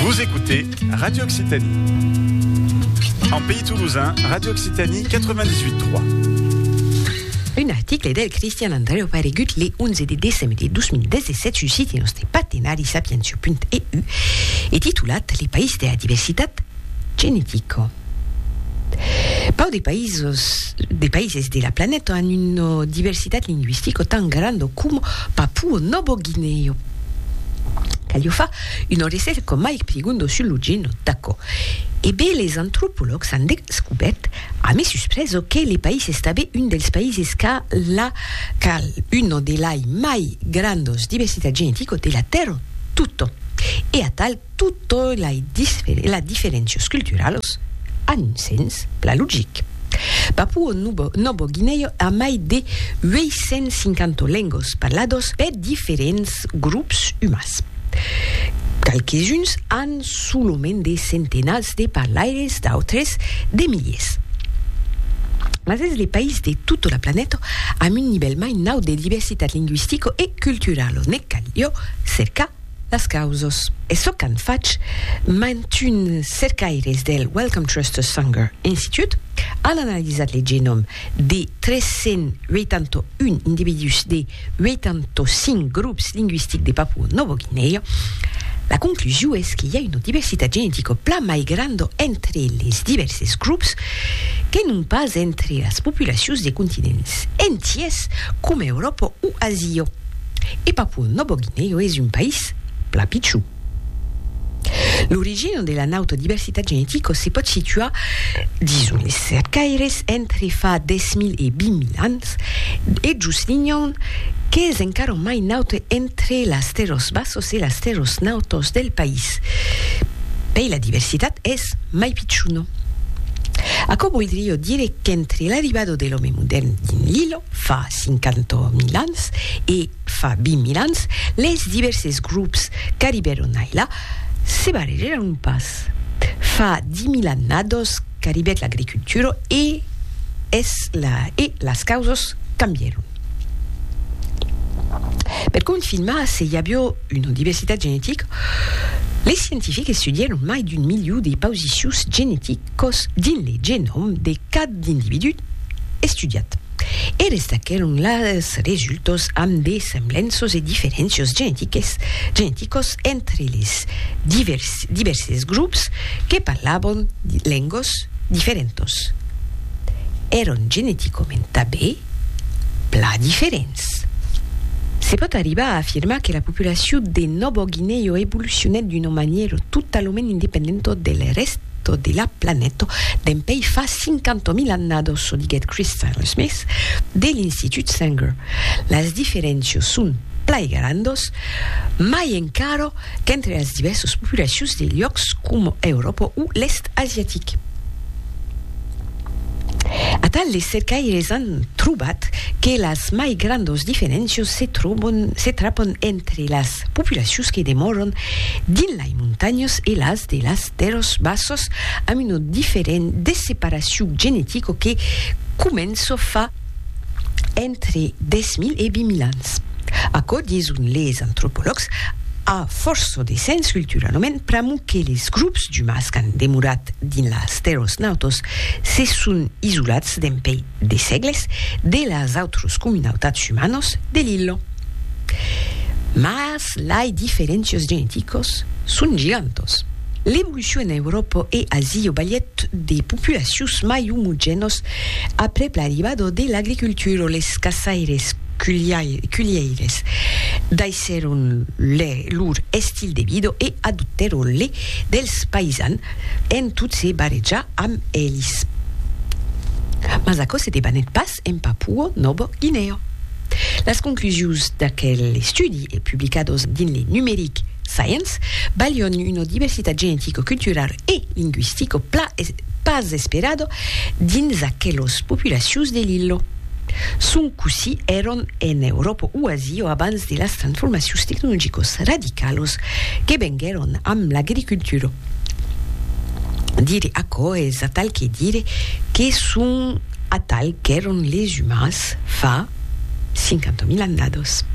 Vous écoutez Radio Occitanie. En pays toulousain, Radio Occitanie 98.3. Un article del Christian Andreu paregut le 11 de décembre de 2017 sus site nostre partenari sapientia.eu e titulat Les països de la diversitat genética. Pau de països de païses de la planèta an una diversitat lingüistica tan granda com Papua Nova Guinea. Caliu far una resèrca coma Mike Prigondo sul Lugino, d'aquò. E be les antropològs an descubèrt, a me suspreso, que le país estabe un dels paises qu'a la, qu'a una de lai mai grandos diversitat geneticos de la Tèrra, totton. E atal. Totei lei diferencios culturalos an un sens plan logic. Papuo Nobo Guineo a mai de 850 lengos parlados per diferents grops umans. Qualques-uns an solament de centenats de parlaires, d'autres de miliers. Mas es le país de tota la planeta amb un nivèl mai naut de diversitat linguistico e culturalo, ne cal jo cercar Las causas, es çò qu'an fach mantun cercaires del Wellcome Trust Sanger Institute, an analizat le genòm de 381 individús de 85 grops lingüistics de Papua Nòva Guinèa. La conclusion es que i a una diversitat genetica plan mai granda entre les divèrses grops que non pas entre las populacions de continents entiers coma Euròpa o Asia. E Papua Nòbo Guinèu es un país plan pichon. L'origina de la nauta diversitat genetica se pòt situar, dison es cercaires, entre fa 10.000 e 20.000 ans, e jos l'Inhon, qu'es encara mai naut entre las terras bassas e las terras nautas del país. Pei la diversitat es mai pichona. Aquò voldriá dire qu'entre l'arribada de l'òme modèrn dins l'illa, Fa 50 mil ans e fa 20 mil ans, les divèrses grops qu'arribèron ailà se barrejaron pas. Fa 10 mil annados qu'arribèt l'agricultura e es la e las causas cambièron. Per confirmar se i avió Una diversitat genetica, les scientifics estudièron mai d'un miliu de pausicius geneticos dins le genòm de cad individú estudiat e restaquèron las resultas amb de semblenças e diferéncias geneticas entre les divèrses grops que parlavan lengas diferentas. Èran geneticament tanben plan diferents. Ets. Se pòt arribar a afirmar que la populacion de Nòvo Guinèo evolucionèt d'una manièra totalament independenta del rèsta de la planeta dempeis fa 50.000 annadas, çò diguèt Chris Taylor-Smith de l'Institut Sanger. Las diferéncias son plai grandas, mai encara qu'entre las divèrsas populacions de luòcs coma Euròpa o l'Èst asiatic. Atal les cercaires an trobat que las mai grandos diferéncios se trobon, se trapon entre las populacions que demoron dins lai montanhos e las de las terros bassos amb una diferent desseparacion genetico que començo fa entre 10.000 e 20.000 ans. Aquò, dison les antropològs, a fòrça de sens culturalament pr'amor que les grops d'umans qu'an demorat dins las tèrras nautors se son isolats dempuèi de sègles de las autras comunautats umanas de l'illa. Mas lai diferéncias geneticas son gigantas. L'evolucion en Euròpa e Asia balhèt de populacions mai omogenas Aprèp l'arribada de l'agricultura les caçaires culhièires daissèron lor estil de vida e adoptèron le dels païsans en tot se barrejar amb elis. Mas aquò se debanèt pas en Papua Nòva Guinèa. Las conclusions d'aquel estudi, publicadas dins le numeric Science, balhon una diversitat genetica, culturala e lingüistica pas esperada dins aquelos populacius de l'illo. Son cossí èron en Euròpa o Asia abans de las transformacius tecnologicos radicalos que venguèron amb l'agricultura. Dire aquò es atal que dire que son atal qu'èron les umans fa 50 mil annados.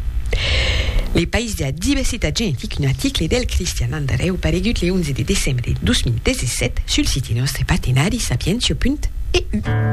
Le País de la diversitat genetic un article del Cristian Andareu paregut le 11 de decembre 2017 sul siti nòstre partenari sapientia.eu.